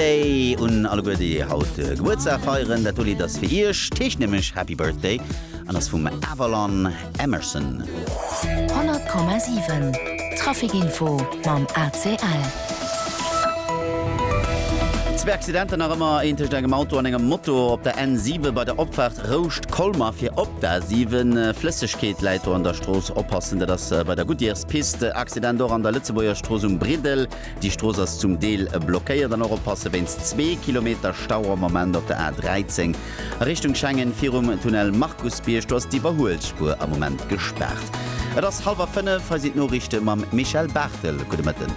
Birthday un alleguer déi haut Gebuertsdag feieren. Dat do Lidd ass fir iech, d'heescht nämlech Happy Birthday an ass vum Avalon Emerson. 100,7 Traficinfo mam ACL. Zwee Accidenter nach ëmmer, een tëscht engem Auto an engem Moto op der N7 bei der Opfaart Rouscht Colmer fir op d'A7. Flëssegkeet läit do an der Strooss, oppassen, dat ass bei der Goodyears Piste. Accident och an der Lëtzebuerger Strooss um Briddel. Déi Strooss ass zum Deel blockéiert an och oppasse wéinst zwee Kilometer Stau am Moment op der A 13 a Richtung Schengen virum Tunnel Markusbierg. Do ass d'Iwwerhuelspuer am Moment gespaart. Et ass hallwer fënnef, hei sinn d'Noriichte mam Michèle Barthel. Gudde Mëtten.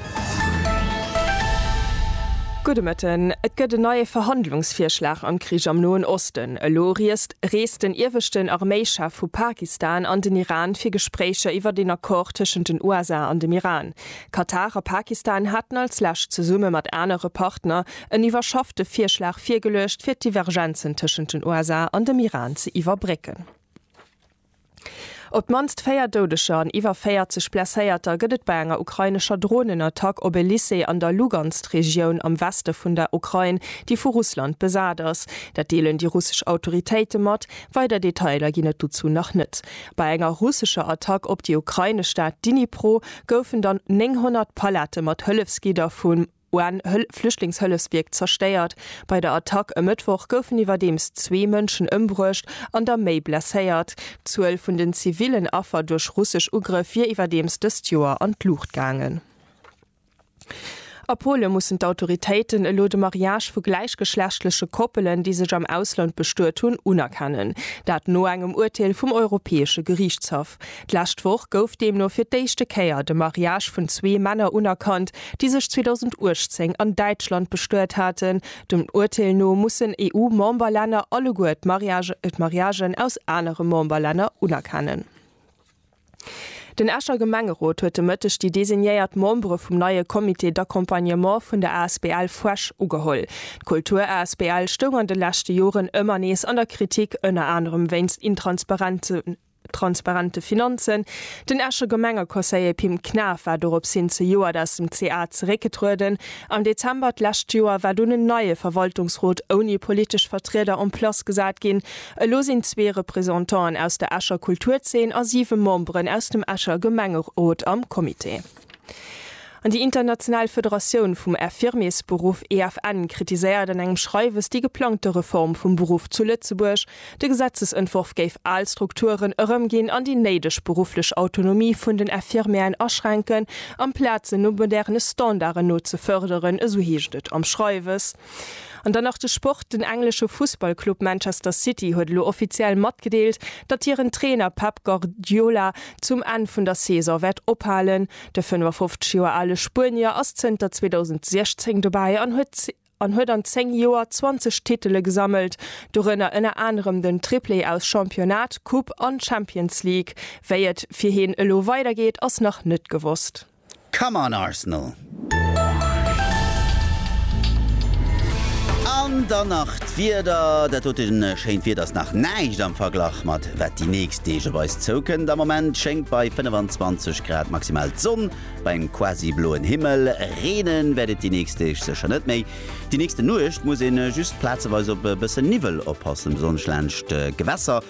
Gudde Mëtten. Et gëtt en neie Verhandlungsvirschlag am Krich am Noen Osten. Elo riest reest den ieweschten Arméichef vu Pakistan an den Iran fir Gespréicher iwwert een Accord tëschent den USA an dem Iran. Katar a Pakistan haten als lescht zesumme mat anere Partner en iwwerschaffte Virschlag virgeluecht, fir d'Divergenzen tëschent den USA an dem Iran ze iwwerbrécken. Op d'mannst 4 Doudeger an iwwer 40 Blesséierter gëtt et bei enger ukrainescher Dronenattack op e Lycée an der Lugansk-Regioun am Weste vun der Ukrain, déi vu Russland besat ass. Dat deelen déi russesch Autoritéite mat. Weider Detailer ginn et dozou nach net. Bei enger russescher Attack op déi ukrainesch Stad Dnipro, goufen dann 900 Pallette mat Hëllefsgidder vum UN-Flüchtlingshëllefswierk zerstéiert. Bei der Attack e Mëttwoch goufen iwwerdeems zwee Mënschen ëmbruecht an der méi blesséiert. D'Zuel vun den zivillen Affer duerch russesch Ugrëff wier iwwerdeems dëst Joer an d'Luucht gaangen. A Polen mussen d'Autoritéiten elo de Mariage vu gläichgeschlechtleche Koppelen, déi sech am Ausland bestuet hunn, unerkennen. Dat no engem Urteel vum Europäesche Geriichtshaff. D'lescht Woch gouf deemno fir d'éischte Kéier de Mariage vun zwee Männer unerkannt, déi sech 2018 an Däitschland bestuet haten. Dem Urteel no mussen EU-Memberlänner alleguer d'Mariagen aus anere Memberlänner unerkennen. Den Escher Gemengerot huet de Mëtteg déi designéiert Membere vum neie Comité d'accompagnement vun der asbl Fuesch ugeholl. D'Kultur asbl stoung an de leschte Joren ëmmer nees an der Kritik, ënner anerem wéinst intransparente Finanzen. Den Escher Gemengeconseiller Pim Knaff war dorops hin zejoert aus dem CA zeréckgetrueden. Am Dezember d'lescht Joer war dunn en neie Verwaltungsrot ouni politesch Vertrieder en place gesat ginn. Elo sinn zwee Représentanten aus der Escher Kulturzeen a siwe Memberen aus dem Escher Gemengerot am Comité. An déi international Federatioun vum Infirmiersberuff, EFN, kritiséiert an engem Schreiwes déi geplangte Reform vum Beruff zu Lëtzebuerg. De Gesetzesentworf géif al Strukturen erëmginn an déi néideg berufflech Autonomie vun den Infirmièren aschränken, amplaz se no moderne Standarden no ze fërderen, esou heescht et am Schreiwes. An dann nach de Sport, Den englesche Fussballclub Manchester City huet elo offiziell matgedeelt, datt hiren Trainer Pep Guardiola zum Enn vun der Saison wäert ophalen. De 55 Joer ale Spuenier ass zënter 2016 dobäi an huet an huet an 10 Joer 20 Titele gesammelt, dorënner ënner anerem den Triplé aus Championnat, Coupe an Champions League. Wéi et fir heen elo weidergeet, ass nach net gewosst. Come on Arsenal! An dann nach d'Wieder. Dat dote schéint Wieder ass nach näischt am Verglach mat wat déi nächst Deeg op eis zoukënnt. Am Moment schéngt bei 25 Grad maximal d'Sonn bei engem quasi bloen Himmel. Reene wäert et déi nächst Deeg sécher net méi. Déi nächste Nuecht muss ee just plazeweis op e bësse Niwwel oppassen, besonnesch laanscht d'Gewässer.